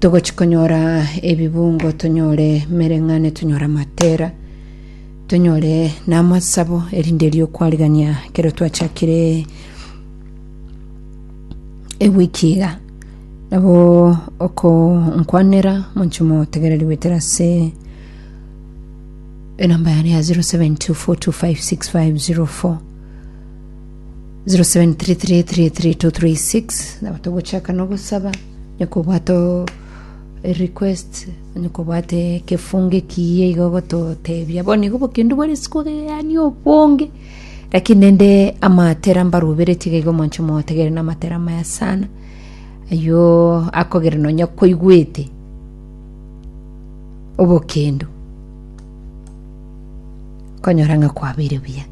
Togochi konyora ebibungo tonyore mereng'ane tonyore amatera tonyore namasabo erinde eriokwarigania kero twachakire ewiki iga nabo okonkwanera monche motegereri gwetera ase enamba yane ya 0724256504 0733333236 nabo togochaka nogosaba nyakobwata o- e request nyakobwata ekefungo ekiya iga ogototebia bono igo obokendu bwa rituko yaani obonge lakini nende amatera mbaruberetie iga iga omonche mogotegerera na amatera amaya sana ayio akogera nonya kwaigwete obokendu konyora ng'a kwabeire buya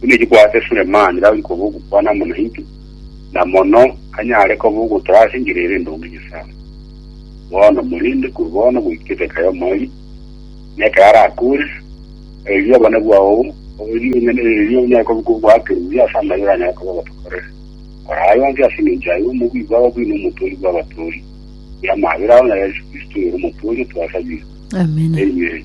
buna echiko ase Sulemani Daudi koba ogokwana amo naintwe, na mono anyare koba ogotoa ase enchera ere endonge Nyasae. Bono morende korwa bono goika eseka y'omoerio, na ekero arakoore, erio obonene bwao, erio onye erio onyare koba goakerwa buya ase amayio oranyare koba ogotokorera. Kora aya onsi ase engencho y'ayio omobui bwao bw'ina omotoori bw'abatoori, bw'amabera ao na Yeso Kristo oyore omotoori otwasabire. Amina. Amen.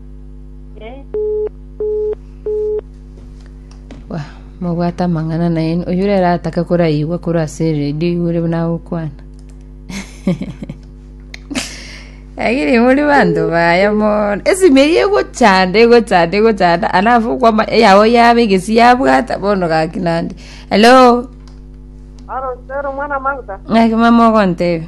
Wa- mobwate amang'ana naye oyo rero atake koraigwa korwa ase eredio igure buna agokwana agire muri banto baya mono esimi eye egochanda egochanda egochanda alafu kwama eyao yaba egesi yabwata bono gaki nande hello Aro sero mwana mauta. ng'aki mama ogontebe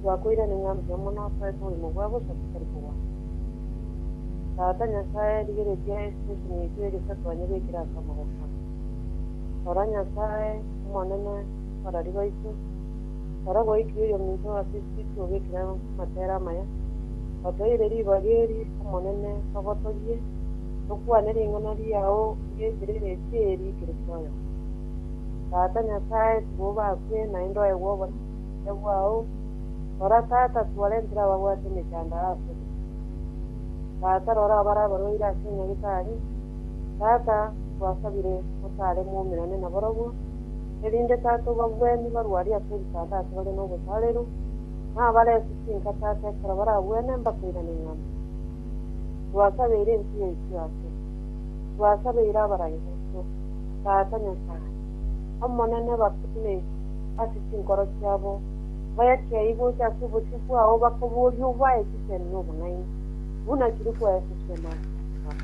Twakoirane ng'a mbuya mono asoe oborimo bwa bosa botari kogwana. Tata Nyasae, rigereria esitesheni eria egesato anyebekere ase amaboko aa. Rora, Nyasae, Omonene, abarari baito, ekero gwaikire oyominto ase esititi obekire amatere amaya, otoeire ribaga eri, Omonene, togotogie, tokwane ring'ana riao ri'enchera ere etie eri ekero twayoka. Tata Nyasae, tiga obakwe, naende oegwe obonene. Ebwao, rora, tata, twarentire ababwate emechandara asore. Tata, rora abare abarwaire ase enyagetari. Tata, twasabire otaare moumerane nabarabwo, erinde, Tata, obabwenie barwarie ase ebitanda ase bare nobosareru, na abare ase chinka, Tata, ekero barabwene mbakoirane ing'ana. Twasabeire ense yaiswe ase. Twasabeire abaraireso, Tata Nyasae, Omonene, bakuneirie. ase chinkoro chiabo, bayachiaye gocha ase obosio bwao bakoboria obae echiseeni na obonaini, buna chiri koesesia maanchani ao.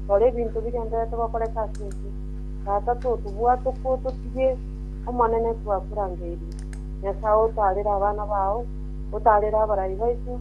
Rora ebinto bigendererete gokoreka ase ense, Tata totobwate okwo ototige, Omonene twakorangeirie, Nyasae otaarere abana bao, otaarere abarai baito,